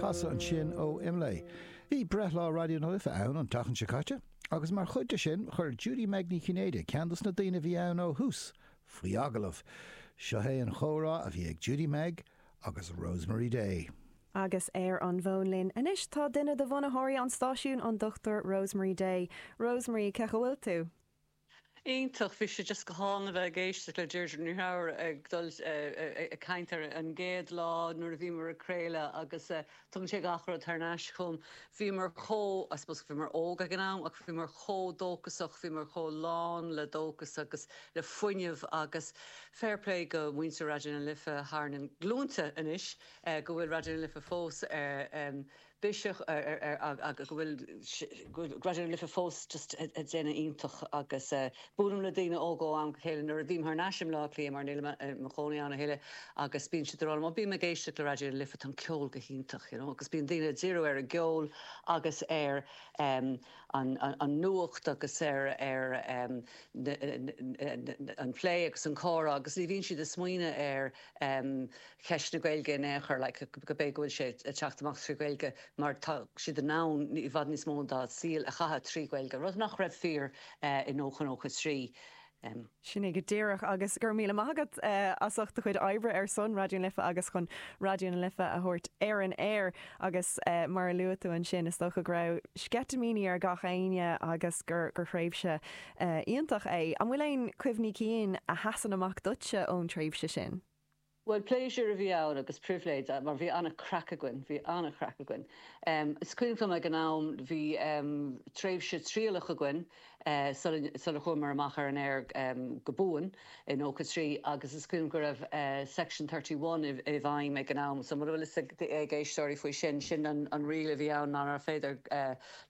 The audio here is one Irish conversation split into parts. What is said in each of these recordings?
Casadh ansin ó Imlé. Bhí breithlá Raidió na Life ann an tseachtain seo caite agus mar chuid de sin chuir Judy-Meg Ní Chinnéide, ceann dos na daoine a bhí ann ó thús, faoi agallamh. Seo é an comhrá a bhí ag Judy-Meg agus Rosemary Day. Agus ar an bhfón linn anois tá duine de bhunaitheoirí an stáisiúin, an Dr. Rosemary Day. Rosemary, cén chaoi a bhfuil tú? Iontach. Bhí sé just go hálainn a bheith ag éisteacht le Deirdre Ní Ghadhra ag dul ag caint ar an gcéad lá nuair a bhíomar ag craoladh agus tugann sé gach rud thar n-ais chugam. Bhíomar chomh, I suppose bhíomar óg ag an am ach bhíomar chomh dóchasach, bhíomar chomh lán le dóchas agus le fuinneamh agus fair play go muintir Raidió na Life thar na glúnta anois go bhfuil Raidió na Life fós ar biseach ar ar ar a a go bhfuil raidió na life fós just ag déanamh iontach agus a buailim le daoine óga ó am go chéile nuair a bhím thar n-ais i mBleá Cliath mar nílim i mo chónaí ann a thuilleadh agus bíonn siad ag rá liom ó bím ag éisteacht le raidió na life tá an ceol go hiontach you know agus bíonn daoine ag díriú ar an gceol agus ar em an an an nuacht agus ar ar em na na na an plé agus an comhrá agus ní bhíonn siad ag smaoineamh ar cheist na Gaeilge in aon chor, like gurb é go bhfuil sé ag teacht amach trí Ghaeilge mar tá siad in ann i bhfad níos mó dá saoil a chaitheamh trí Ghaeilge, rud nach raibh fíor i 1993. Sin é go díreach agus go raibh míle maith agat as ucht do chuid oibre ar son Raidió na Life agus chun Raidió na Life a thabhairt ar an aer agus mar a luaigh tú ansin is dócha go raibh sceitimíní ar gach éinne agus gur thréimhse Iontach é. An bhfuil aon chuimhní cinn a sheasann amach duitse ón tréimhse sin? Bhuel, pléisiúr a bhí ann agus pribhléid mar bhí an-chraic againn, bhí an-chraic againn. Is cuimhin dom ag an am bhí tréimhse trialach againn sula chuamar amach ar an aer go buan. i 93 agus is cuimhin dom go raibh Section Thirty One i bhfeidhm ag an am. So mura bhfuil fhios ag éisteoirí faoi sin, sin an riail a bhí ann nárbh fhéidir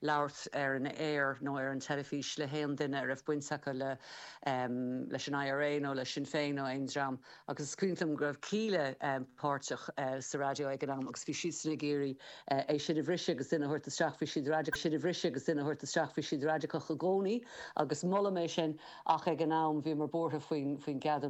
labhairt ar an aer nó ar an teilifís le haon duine a raibh baint acu leis an IRA nó le Sinn Féin nó aon dream. Agus is cuimhin dom go raibh Kíla páirteach sa raidió ag an am agus bhí siadsan ag iarraidh é sin a bhriseadh agus duine a thabhairt isteach, bhí siad raidiceach, sin a bhriseadh agus duine a thabhairt isteach, bhí siad raidiceach i gcónaí agus molaim é sin ach ag an am bhíomar buartha faoin gceadúnas.